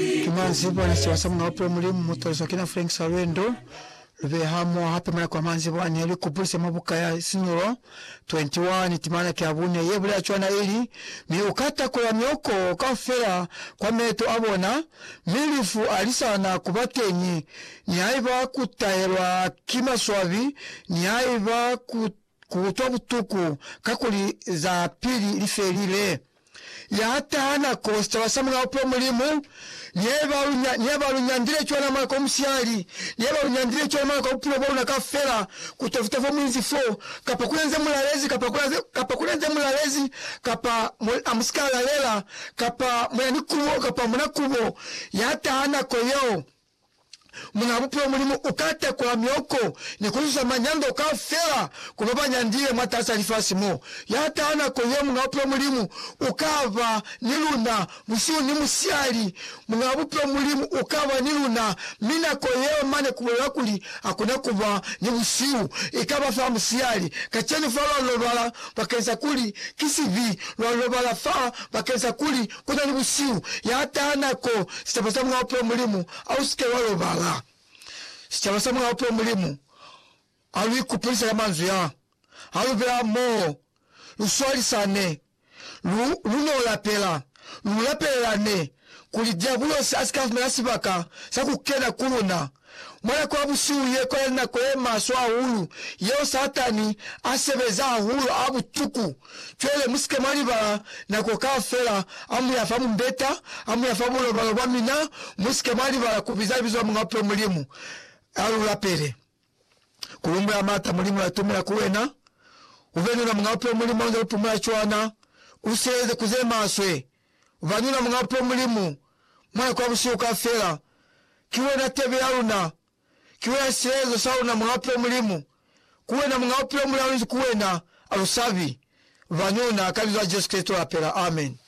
Ki manzibwa ni siwa sa Muñ'a Bupilo Mulimu mu taliswa ki na Frank Salwendo. Lu behe hamoho hape malako a manzibwa ne lu kupulisa mwa buka ya Sinulo 21, timana ki ya bune, ye bulela cwana ili, Mi u ka takola mioko kaufela kwa meeto a bona, mi lifu a li sa na ku ba teñi, nihaiba ku tahelwa ki maswabi, nihaiba ku Ku utwa butuku kakuli za pili li felile. Ya taha nako sicaba sa Mulao Peo Mulimu, neba lu, neba lu nyandile cwana mwa nako ya musiyali, neba lu nyandile cwana mwa nako ya bupilo bwa luna kaufela, ku tafuta fo mu inzi fo, kapa ku na ni ze mu lalezi, kapa ku na, kapa ku na ni ze mu lalezi, kapa mu, a mu si ka lalela, kapa mu na ni kubo, kapa mu na kubo. Ya taha nako yeo. Muna Bupilo Mulimu uka tekola mioko ni kuzuza manyando kaufela ku babanyandile mwataas'a lifasi mo. Ya taha nako ye, Muñ'a Bupilo Mulimu uka ba ni luna busihu ni musihali. Muñ'a Bupilo Mulimu uka ba ni luna, mi nako yeo mane kubulela kuli hakuna kuba ni busihu, ikaba fa musihali. Kacenu fa lwa lobala bakeng sa kuli ki sibi, lwa lobala fa bakeng sa kuli ku na ni busihu, ya taha nako, sicaba sa Mulao peo Mulimu a u si ke wa lobala. Sicaba sa Mulao peo Mulimu ha lu ikupulisa ka manzwi a, ha lu bela hamoho, lu swalisane, lu, lu n'o lapela, lu lapelelane, kuli Diabulosi a si ka fumana sibaka sa ku kena ku luna. Mwa nako ya busihu ye kwala ni nako ye maswe hahulu yeo Satani a sebeza hahulu ha butuku. Cwale mu si ke mwa libala nako kaufela ha mu ya fa mumbeta, ha mu ya fa bulobalo bwa mina, mu si ke mwa libala ku biza libizo la Muñ'a Bupilo Mulimu, ha lu lapele. Ku humbula m'ata Mulimu l'atumela ku wena, u be ni ona Muñ'a Bupilo Mulimu ha u nze u pumula cwana, u sieleze ku ze maswe. Banina Muñ'a Pwo Mulimu, Mwa Kwa Busihu Kaufela, Ki Wena Tebe Ya Luna, Ki Wena Silezo Sa Luna Muñ'a Pwo Mulimu, Ku Wena Muñ'a Bupilo Muli Alunzi Ku Wena, Alusabi, Banina, Ka Libizo La Jesu Kreste Lapela, Amen.